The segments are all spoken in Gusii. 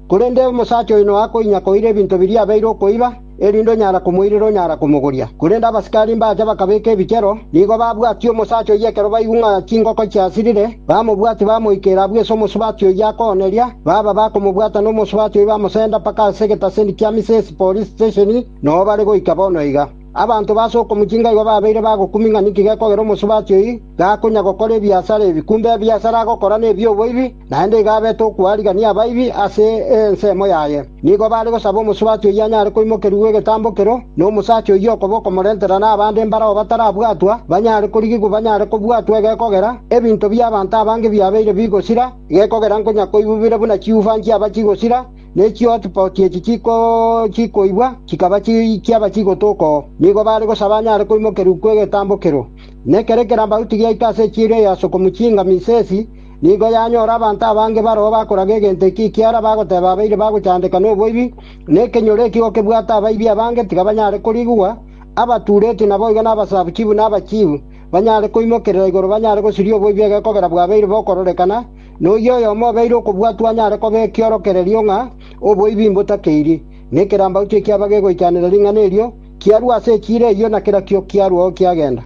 Korende omosacha oyo noakoinya koira ebinto biria abeire okoiba, erinde onyara komoirera onyara komogoria. Korende abasikari mbacha bakabeka ebichero, nigo babwatia omosacha oyio ekero baigwa ng'a chingoko chiasirire, bamobwatia bamoika ere abwo ase omosubati oyio akooneria, baba bakomobwata nomosubati oyio bamosenda mpaka ase egetaseni kia Misesi Police Station, noo bare goika bono iga. Abanto b'ase okomochiika igo babeire bagokumia ng'a ninki gekogera omosubati oyio gakonya gokora ebiasara ebi. Kumbe ebiasara agokora nebi'oboibi, naende igo abete okwarigania abaibi ase ensemo yaye. Nigo bare gosaba omosubati oyio anyare koimokerigwa egetambo kero, na omosacha oyio okoba okomorentera nabande mbarao batarabwatwa banyare korigigwa banyare kobwatwa egekogera ebinto bi'abanto abange biabeire bigosira, egekogera nkonya koibubire buna chiufa nchiaba chigosira, Ne chihotspots echi chikoigwa, chikaba chiaba chigotu oko, nigo baare gosaba anyare koimokerwa kw'egetambokero. Ne kere ekerambaru tigiaika ase echieri eyo ase okomochiinga Misesi, nigo yanyora abanto abange baroo bakoraga egento eki ekiara bagoteba abaire bagochandeka noboibi, na ekenyoro eki gokebwate abaibi abange tiga banyare korigigwa, abatuureti naboigo nabasabuchibu nabachiibu banyare koimokerera igoro banyare gosiria oboibi egekogera bwabeire bokororekana, na oyio oyomo obeire okobwatwa anyare koba ekiorokererio ng'a oboibi mbotakeiri, na ekerambaute ekiaba gegoichanera ring'ana erio, kiarue ase echiira eyio, na kera kio kiaruao kiagenda.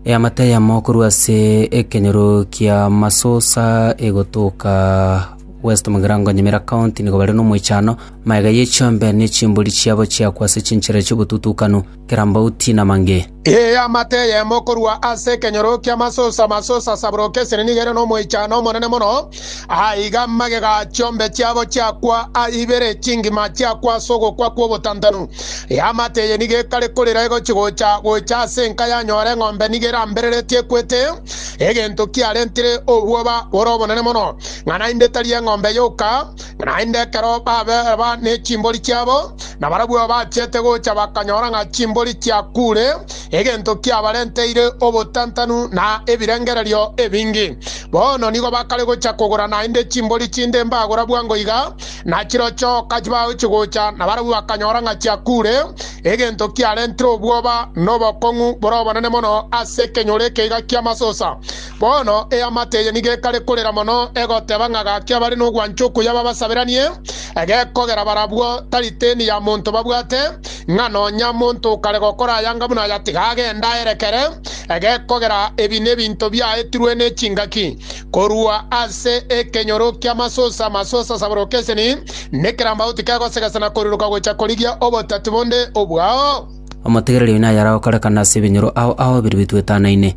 Eamate eyemo korwa ase ekenyoro kia Masosa egotoka West Mugirango Nyamira County nigo bare nomoichano, magega ye chiombe ne chimbori chiabo chiakwa ase chinchera chi'obotutukanu. kerambauti na mange. Ee, amate eyemo korwa ase ekenyoro ki'amasusa, amasusa asaboroke esene nigo ere nomoichano omonene mono, aiga magega a chiombe chiabo chiakwa a ibere chingima chiakwa ase ogokwa kw'obotantanu. Ee, amate eye nigo ekare korera egochi gocha gocha ase enka yanyora eng'ombe nigo erambereretie ekwete egento kiarentire obwoba bore obonene mono, ng'a naende tari eng'ombe yoka, Naende ekero babeeba nechimbori chiabo, nabarabwo bachete gocha bakanyora ng'a chimbori chiakuure, egento kiabarenteire obotantanu na ebirengererio ebinge. Bono nigo bakare gocha kogora naende chimbori chinde mbagora bwango iga, na chirochio kachibagochi gocha nabarabwo bakanyora ng'a chiakuure, egento kiarentire obwoba na obokong'u bore obonene mono ase ekenyoro eke iga ki'amasusa. Bono eamate eye nigo ekare korera mono, egoteba ng'a gaki abare nogwancha okuya babasaberanie, egekogera barabwo tari teni ya monto babwate, ng'a nonya monto okare gokora ayanga buna aya tiga agende aerekere, egekogera ebi nebinto biaetirwe nechingaki korwa ase ekenyoro ki'amasusa, amasusa asaboroke eseni, nekerambauti kegosegesana koriroka gocha korigia obotati bonde obwao. Omotegereri oino ayare agokorekana ase ebinyoro ao ao bire bitwetanaine.